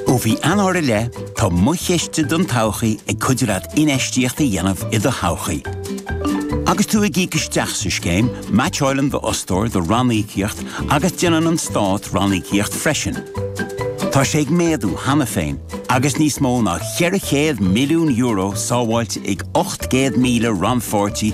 Ó mhí Eanáir i leith, tá Mo Chiste don Todhchaí ag cuidiú leat infheistíocht a dhéanamh i do thodhchaí. Agus tú ag íoc isteach sa scéim, meaitseálann d'fhostóir do ranníocaíocht agus déanann an Stát ranníocaíocht freisin. Tá sé ag méadú cheana féin agus níos mó ná €400 milliún sábháilte ag 800,000 rannpháirtí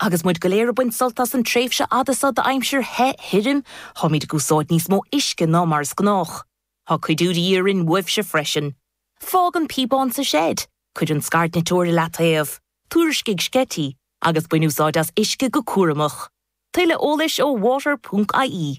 Agus muid go léir ag baint sult as an tréimhse fhada seo d'aimsir the thirim, táimid ag úsáid níos mó uisce ná mar is gnách. Tá cuidiú de dhíth orainn uaibhse freisin. Fág an píobán sa seid, cuir an scairdniteoir i leataobh, tuairiscigh sceití, agus bain úsáid as uisce go cúramach. Tuilleadh eolais ar water.ie.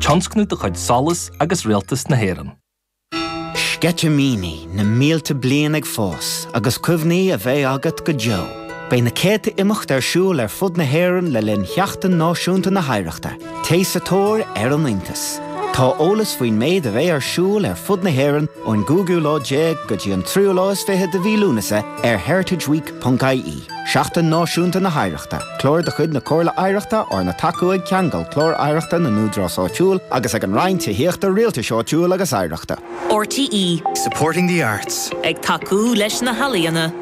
Tionscnamh de chuid SOLAS agus Rialtas na hÉireann. Sceitimíní na mílte bliain ag fás agus cuimhní a bheidh agat go deo. Beidh na céadta imeacht ar siúl ar fud na hÉireann le linn Sheachtain Náisiúnta na hOidhreachta. Téigh sa tóir ar an iontas. Tá eolas faoin méid a bheidh ar siúl ar fud na hÉireann ón gcúigiú lá déag go dtí an tríú lá is fiche de mhí Lúnasa ar heritageweek.ie. Seachtain Náisiúnta na hOidhreachta, Clár de chuid na Comhairle Oidhreachta arna tacú ag Ceangal, Clár Oidhreachta na nÚdarás Áitiúil, agus ag an Roinn Tithíochta, Rialtais Áitiúil agus Oidhreachta. RTÉ. Supporting the arts. Ag tacú leis na healaíona.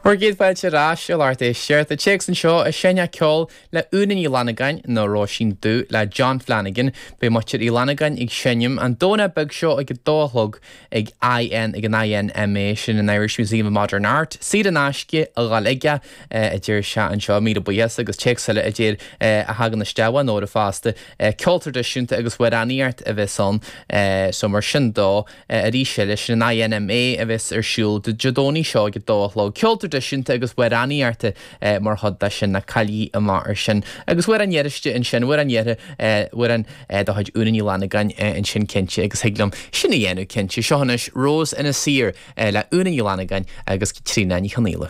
Ár gcéad fáilte ar ais i lár Deisceart, an téacs anseo a seinneadh ceol le Úna Ní Fhlannagáin, nó Róisín Dubh le John Flanagan. Beidh Muintir Uí Fhlannagáin ag seinm an Domhnach beag seo ag a dó a chlog ag IN ag an INMA, sin an Irish Museum of Modern Art. Cead in aisce, a dhul chuige, a deir sé anseo. Míle buíochas agus téacs eile a deir a thagann isteach ó Nóra fosta. Ceol traidisiúnta agus amhránaíocht a bheas ansin, so mar sin dó. arís eile, sin an INMA a bheas ar siúl Dé Domhnaigh seo ag a dó a chlog. Ceol traidisiúnta agus amhránaíocht mar chuid de sin, ná cailligí mar sin. Agus amhrán iarraiste ansin, amhrán iarrtha, amhrán de chuid Úna Ní Fhlannagáin ansin cinnte, agus thig liom sin a dhéanamh cinnte. Seo anois Rose ina saor le Úna Ní Fhlannagáin agus Caitríona Ní Chonaola.